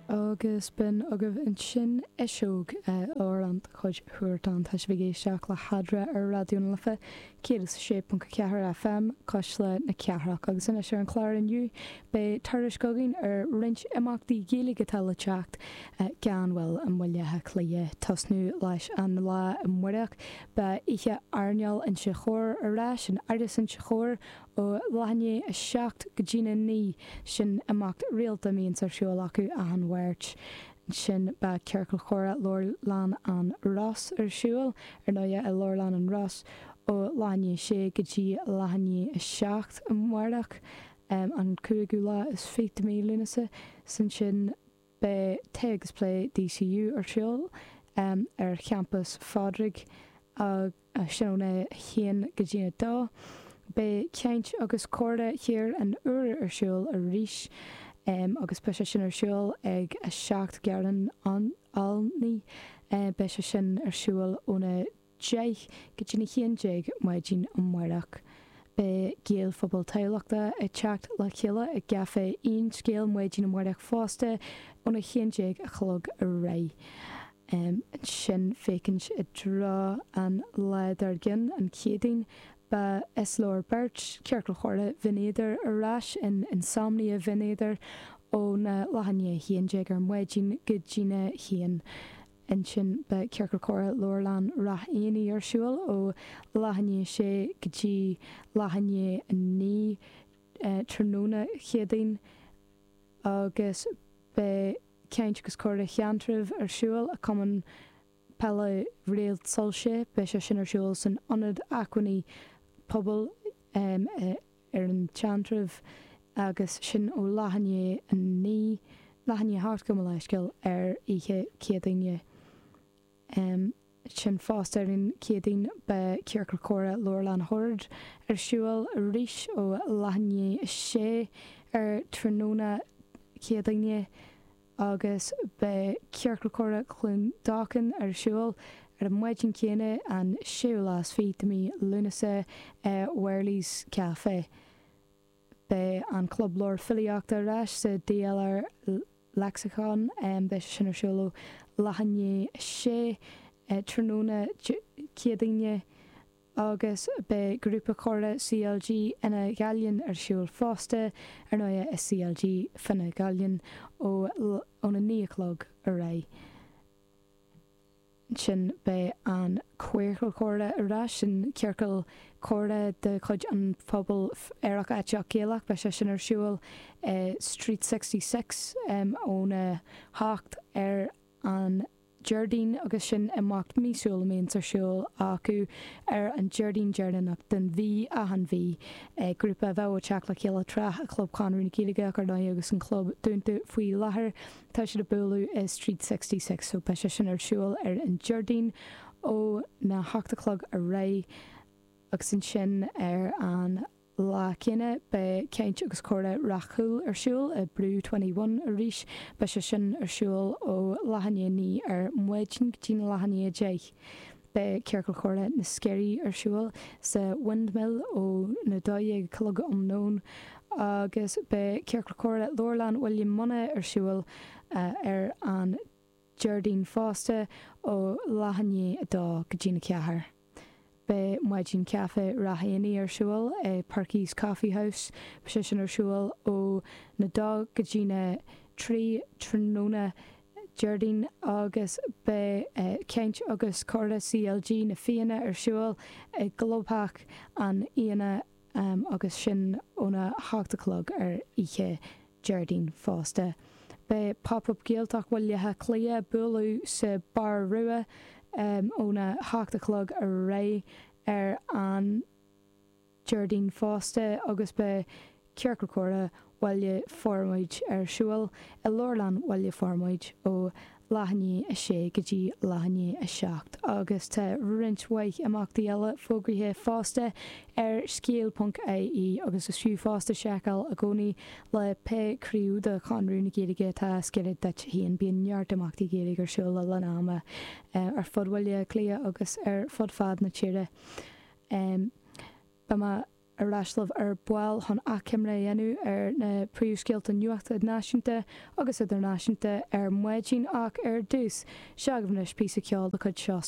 agus b'in agaibh ansin eiseódh ár an chuid chuairteán tá sibh ag éisteacht le hEadra ar Raidió na Life 106.4 FM, Cuisle na Cathrach agus anois ar an chlár inniu beidh tuairisc againn ar roinnt imeachtaí Gaeilge atá le teacht gan mhoill i mBaile Átha Cliath. tosnú leis an lá amáireach beidh oíche airneáil Inse Chór ar ais in Áras Inse Chór ó leath i ndiaidh 7 go dtína 9 sin imeacht rialta a mbíonn ar siúl acu achan Mháirt. Ansin beidh Ciorcal Chomhrá Leabharlann an Ros ar siúl, ar ndóighe, i Leabharlann an Ros ó leath i ndiaidh 6 go dtí leath i ndiaidh 7 amáireach, an cúigiú lá is fiche de mhí Lúnasa. 'S ansin beidh Tae agus Plé DCU ar siúl ar Champas Phádraig agus. sin óna haon go dtí a dó. Beidh Caint agus Comhrá Thír an Iúir ar siúl arís agus beidh sé sin ar siúl ag 7 Garrán Olney. Beidh sé sin ar siúl óna deich go dtína haon déag maidin amáireach. Beidh Gaelphobal Thamhlachta ag teacht le chéile i gCaifé Aon Scéal maidin amáireach fosta óna haon déag a chlog ar aghaidh. ansin féachaint i dtreo an lae dár gcionn, an Chéadaoin. Beidh Is Leor Beirt, Ciorcal Chomhrá Bhinn Éadair, ar ais in Insomnia Bhinn Éadair, óna leath i ndiaidh 11 ar maidin go dtína haon. Ansin beidh Ciorcal Comhrá Leabharlann Rath Éanaigh ar siúl ó leath i ndiaidh 6 go dtí leath i ndiaidh 9 tráthnóna Céadaoin agus beidh. Caint agus Comhrá Sheantraibh ar siúl i Cumann Peile Réaltsoilse. Beidh sé sin ar siúl san Ionad Acmhainní Pobail ar an tSeantrabh agus sin ó leath i ndiaidh a naoi, leath i ndiaidh a hocht gabh mo leithscéal, ar oíche Céadaoine. Ansin fosta ar an Chéadaoin beidh Ciorcal Comhrá Leabharlann Shoird ar siúl arís ó leath i ndiaidh 6 ar tráthnóna Céadaoine agus beidh Ciorcal Comhrá Chluain Dolcáin ar siúl ar an maidin chéanna an séú lá is fiche de mhí Lúnasa i Wearley's Café. Beidh an Club Leabhar Filíochta ar ais sa DLR Lexicon, beidh sé sin ar siúl ó leath i ndiaidh a sé tráthnóna Céadaoine agus beidh Grúpa Comhrá CLG Fhine Ghallainn ar siúl fosta, ar ndóigh i CLG Fine Ghallainn, óna naoi a chlog ar aghaidh. sin, beidh an Ciorcal Comhrá ar ais, an Ciorcal Comhrá de chuid an Phobail Aerach Aiteach Gaelach. Beidh sé sin ar siúl i Street Sixty Six óna hocht ar an Déardaoin agus sin imeacht míosúil a mbíonns ar siúl acu ar an Déardaoin deireanach den mhí, achan mhí. Grúpa a bheadh ag teacht le chéile tráth i gClub Chonradh na Gaeilge, ach ar ndóigh, agus an Club dúnta faoi láthair. Tá siad ag bualadh i Street Sixty Six so beidh sé sin ar siúl ar an Déardaoin ó na hocht a chlog ar aghaidh agus ansin ar an lá céanna beidh Caint agus Comhrá Ráth Cúil ar siúl i Brew Twenty One arís. Beidh sé sin ar siúl ó leath i ndiaidh a naoi ar maidin go dtí'n leath i ndiaidh a deich. Beidh Ciorcal Comhrá na Sceirí ar siúl sa Windmill ó na dó dhéag a chlog um nóin agus beidh Ciorcal Comhrá Leabharlann Bhaile Munna ar siúl ar an Déardaoin fosta ó leath i ndiaidh a dó go dtí na ceathair. Beidh Maidin Caife Ráth Eanaigh ar siúl i Perky's Coffee House, beidh sé sin ar siúl ó na dó go dtí na trí tráthnóna Déardaoin agus beidh Caint agus Comhrá CLG Na Fianna ar siúl i gclubtheach an Fhianna agus sin óna hocht a chlog ar oíche Déardaoin fosta. Beidh Pop Up Gaeltacht Bhaile Átha Cliath bualadh sa Bar Rua óna hocht a chlog ar aghaidh ar an. Déardaoin fosta agus beidh Ciorcal Comhrá Bhaile Formaid ar siúl i Leabharlann Bhaile Formaid ó leath i ndiaidh a sé go dtí leath i ndiaidh a seacht agus tá roinnt mhaith imeachtaí eile fógraithe fosta ar scéal.ie agus is fiú fosta seiceáil i gcónaí le pé craobh de Chonradh na Gaeilge atá is gaire duit féin. Bíonn neart imeachtaí Gaeilge ar siúl le linn ama ar fud Bhaile Átha Cliath agus ar fud fad na tíre. Ehm. Beidh mé ar ais libh ar ball chun achoimre a dhéanamh ar na príomhscéalta nuachta náisiúnta agus idirnáisiúnta ar maidin ach ar dtús, seo chugaibh anois píosa ceoil de chuid Seosaí.